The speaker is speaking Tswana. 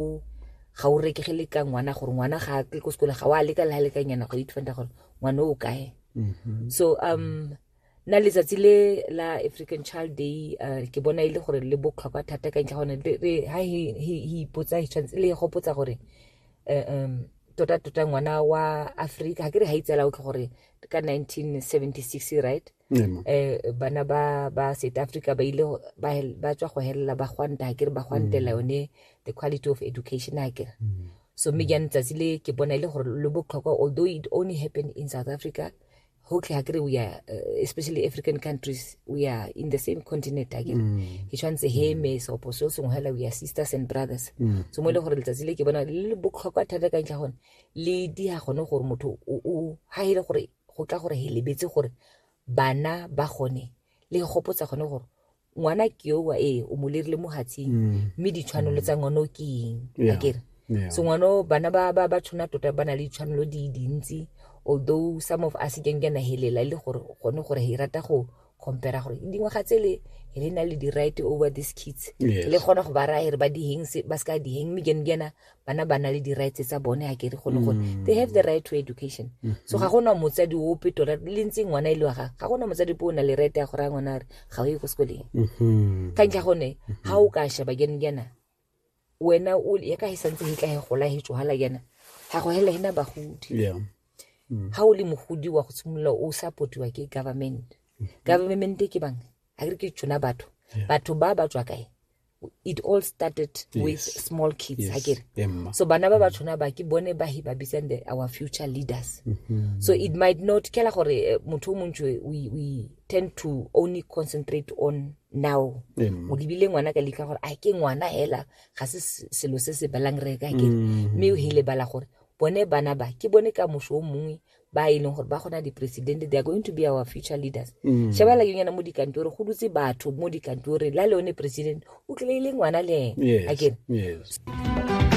o ga o reke ge le ka ngwana gore ngwana ga a tle ko sekole ga o a leka le ga lekanyana go itfanta gore ngwana o kae mm-hmm. so um nna letsatsi le la african child day uh, ke bona e le gore le botlhokwa thata ka ntlha gone ha he ipotsa he tshwanetse le gopotsa gore uh, um tota tota ngwana wa africa ga ke re ga itsela o tlho gore ka 1976 right um bana ba ba south africa ba ile ba tswa go helela ba gwanta ga kere ba gwantela mm. yone the quality of education a kere mm. so mme jane tsatsi le ke bona e le gore lo botlhokwa although it only happened in south africa hotlhe ga kere we are uh, especially african countries we are in the same continent a kere ke tshwanetse he me seopo seo sengwe hela we are sisters and brothers so mo e le gore letsatsi le ke bona le botlhokwa thata ka ntlha gone le di ga gone gore motho ga e le gore go tla gore he lebetse gore bana ba gone le gopotsa gone gore ngwana ke oa ee o mo lerile mo hatsing mm. mme ditshwanelo tsa ngwana o ke eng akere so ngwana bana ba ba ba tshwana tota ba na le ditshwanelo di dintsi although some of us ke nkena helela e le gore gone gore he rata go compare gore dingwaga tse le le na le di-right over these kids yes. le kgona go ba raya re ba diheng ba se ka diheng mme kene kena bana ba na le di-rights tsa bone ga kere gone gore mm. they have the right to education mm -hmm. so ga gona motsadi ope tota le ntseng ngwana e le wa gage ga gona motsadi po o na le right ya go raya ngwana gore ga o ye ko sekoleng mm-hmm. ka ntlha gone ga mm-hmm. o ka sheba kene kena wena o ya ka he santse he tla he gola he tswala yana ga go hela hena bagodi yeah mm. ha o le mogodi wa go tshimolola o supportiwa ke government mm. government ke bang a re ke tsona batho batho ba ba tswa kae it all started yes. with small kids yes. akere so bana ba ba tshwana ba ke bone ba he ba bitsang the our future leaders mm -hmm. so it might not kela gore eh, motho o montsi we, we tend to only concentrate on now mm. o lebile ngwana ka leka gore a ke ngwana hela ga se selo se se balang re ka ke mm. mme o hele bala gore bone bana ba ke bone ka moso o mongwe ba e leng gore ba gona di-president they are going to be our future leaders mm. shebala ke nyana mo dikantore go dutse batho mo dikantore la le one president o tlile e le ngwana le ene yes. akere yes.